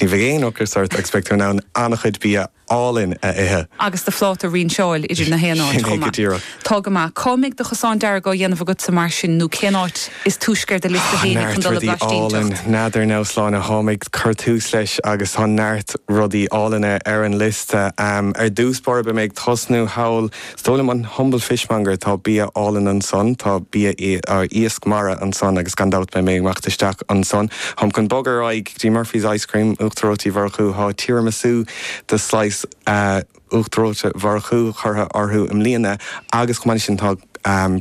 Ní bheidh aon ocras ort agus beidh tú in ann an-chuid bia álainn a ithe. Agus do phláta a rinseáil ins na haon áit chomh maith. Tá go maith. Cá mbeidh do chosán dearg á dhéanamh agatsa mar sin nó cén áit is túisce ar do liosta féinig chun dul ag blaistínteacht? N'fheadar, a Shláine, cá mbeidh mé ag cur tús leis agus tá neart rudaí álainne ar an liosta. Ar dtús báire beidh mé ag tosnú thall Is dóigh liom an humble fishmonger, tá bia álainn ansan, tá bia, iasc mara ansan agus gan dabht beidh mé ag imeacht isteach ansan, táim chun bogadh ar aghaidh go dtí Murphy's Ice Cream, Uachtar Reoite Mhurchú, tá Tiramisu slice Uachtar Reoite Mhurchú curtha orthu i mbliana agus chomh maith leis sin tá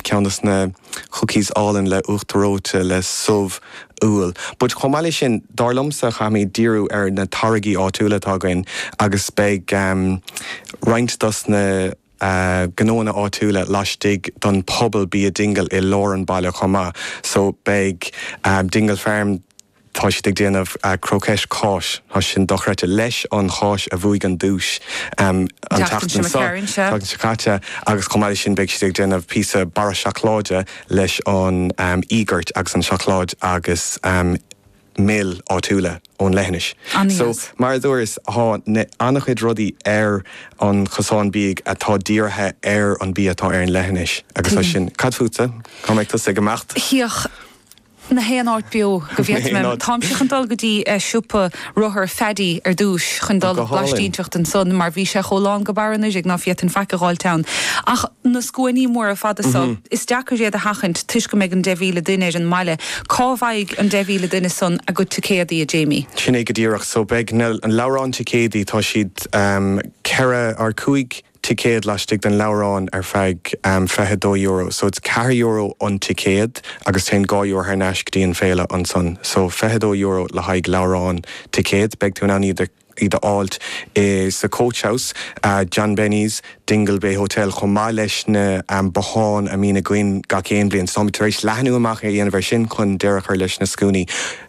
ceann dos na. cookies álainn le uachtar reoite le subh úll but chomh maith leis sin dar liomsa chaithfimíd díriú ar na táirgí áitiúla atá againn agus beidh roinnt dos na gnóanna áitiúla laistigh don puball Bia dingle i lár an baile chomh maith so beidh dingle farm Tá siad ag déanamh cróiceis cáis. Tá sé sin dochreidte. Leis an cháis a bhuaigh an duais an tseachtain seo caite agus chomh maith leis sin beidh siad ag déanamh píosa barra seacláide leis an íogart agus an seacláid agus mil áitiúla ón leithinis. So mar a dúras tá an-chuid rudaí ar an gcosán bídh atá dírithe ar an bia atá ar an leithinis agus tá sé sin. Cad fútsa? Cá mbeidh tusa ag imeacht? na haon áit beo go bhféadfainn. Táimse chun dul go dtí siopa rothar Phaddy ar dtúis chun dul ag blaistínteacht ansan mar bhí sé chomh lán go barr anuraidh ná féadfainn faic a dh'fháilt ann. Ach tá na scuainí móra fada so, is deacair iad a sheachaint toisc go mbeidh an deich mhíle duine ar an mbaile. Cá bhfaighidh an deich mhíle duine san a gcuid ticéadaí, a Jamie? Sin é go díreach. So beidh na leabhráin ticéadaí, tá siad ceithre, cúig, ticéad laistigh den leabhrán ar feadh fiche dó euro. So is ceithre euro an ticéad agus téann dhá euro thar n-ais go dtí an féile ansan. So fiche dó euro le haghaidh leabhrán, ticéad. Beidh tú in ann iad a fháilt i, sa Coach House, John Benny's, Dingle Bay Hotel chomh maith leis na botháin a mbíonn againn gach aon bhliain. So táimid tar éis leathnú amach a dhéanamh ar sin chun deireadh a chur leis na scuainí.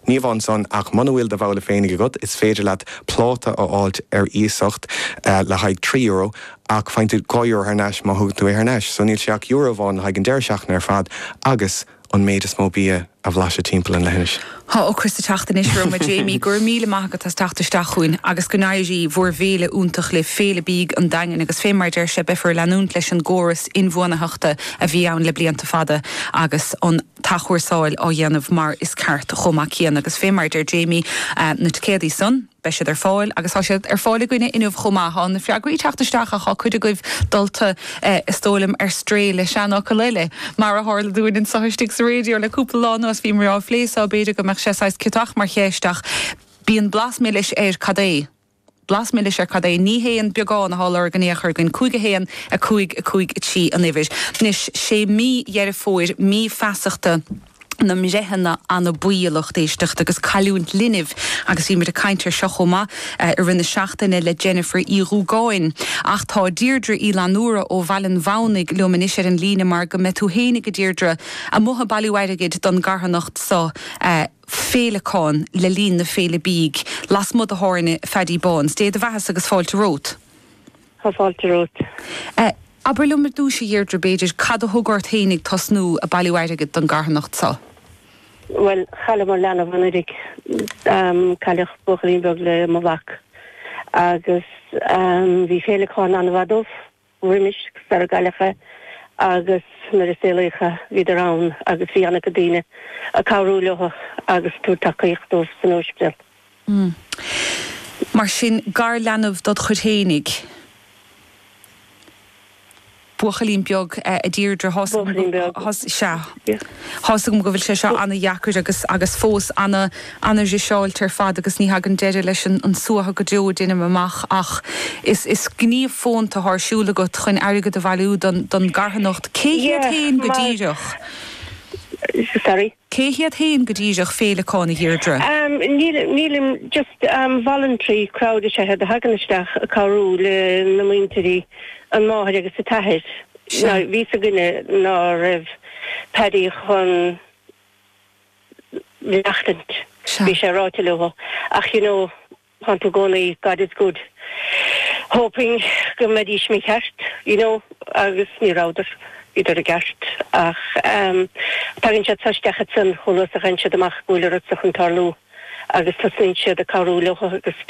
Ní amháin san, ach muna bhfuil do bhabhla féinig agat, is féidir leat pláta a fháilt ar iasacht le haghaidh trí euro, ach faigheann tú dhá euro thar n-ais má thugann tú é thar n-ais. So níl sé ach euro amháin le haghaidh an deireadh seachtaine ar fad agus an méid is mó bia a bhlaiseadh timpeall na leithinise. Tá ocras ag teacht anois orm, a Jamie. Go raibh míle maith agat as teacht isteach chugainn, agus go n-éirí bhur bhféile iontach libh, Féile Bídh an Daingin, agus fé mar a deir sé, beifear ag leanúint leis an gcóras inbhuanaitheachta a bhí ann le blianta fada agus an t-athchúrsáil á dhéanamh mar is ceart chomh maith céanna agus fé mar a deir Jamie, na ticéadaí san, beidh siad ar fáil agus tá siad ar fáil againne inniu chomh maith. Tá na freagraí ag teacht isteach ach tá cuid agaibh dulta, is dóigh liom, ar strae le seanfhocal eile. Mar a tharla dúinn anseo istigh sa Raidió le cúpla lá anuas, bhíomar á phlé so, b'fhéidir go mbeadh sé saghas ciotach mar cheist ach bíonn blas milis air, cad é? blas milis ar cad é. Ní hé an beagán athá á lorg in aon chor againn. Cúig a haon, a cúig, a cúig a trí an uimhir. Anois, sé mí Dheireadh Fómhair mí feasachta na mbreitheanna anabaí d'éisteacht agus cailliúint linbh agus beimid ag caint air seo chomh maith i rith na seachtaine le Jennifer Uí Dhubhgáin. Ach tá Deirdre Uí Fhlannúra ó Bhaile an Bhúnaigh liom anois ar an líne mar go mbeidh tú fhéinig a Deirdre, amuigh ag bailiú airgid don gcarthanacht so. féileacáin le linn na féile bídh lasmuigh do thábhairne Phaddy Bán's. Dé do bheathasa agus fáilte romhat. Tá fáilte romhat. Abair liom ar dtúis, a Dheirdre, b'fhéidir, cad a thug ort fhéinig tosnú a bailiú airgid don gcarthanacht so? Bhuel, chailleamar leanbh anuiridh. Cailleadh buachaillín beag le mo mhac. Agus bhí féileacáin an-mhaith dóibh. roimis sarar cailleadh é agus nuair a saolaíodh é bhíodar ann agus bhí ana-chuid daoine a cabhrú leo agus a tabhair tacaíocht dóibh san ospidéal. Umm. Mar sin, garleanbh dod chuid fhéinig. Buachaillín beag, a Deirdre, thá san. Buachaillín beag. Sea. thá's agam go bhfuil sé seo an-dheacair agus agus fós an-an-an-fhriseáilte ar fad agus ní thagann deireadh leis an an suathadh go deo deinim amach ach is is gníomh fónta thá ar siúl agat chuin airgead a bhailiú don don gcarthanacht. Cé hiad Yeah fhéin go díreach? Sorry? Cé hiad fhéin go díreach Féileacáin, a Dheirdre? Amm níl nílim just amm voluntary crowd is ea a thagann isteach a cabhrú le na muintirí an máthair agus a t-athair. Sea. Now bhí 's againne ná raibh Paddy chun maireachtaint. Sea. Bhí sé ráite leotha. Ach you know, tánn tú gcónaí, God is good, hoping go mbeidís mícheart, you know, agus ní rabhdar. Bhíodar i gceart. Ach ehm, tagann siad so isteach ansan, chomh luath is a gheibheann siad amach go bhfuil a rud so chun tarlú agus tosnaíonn siad a cabhrú leotha agus.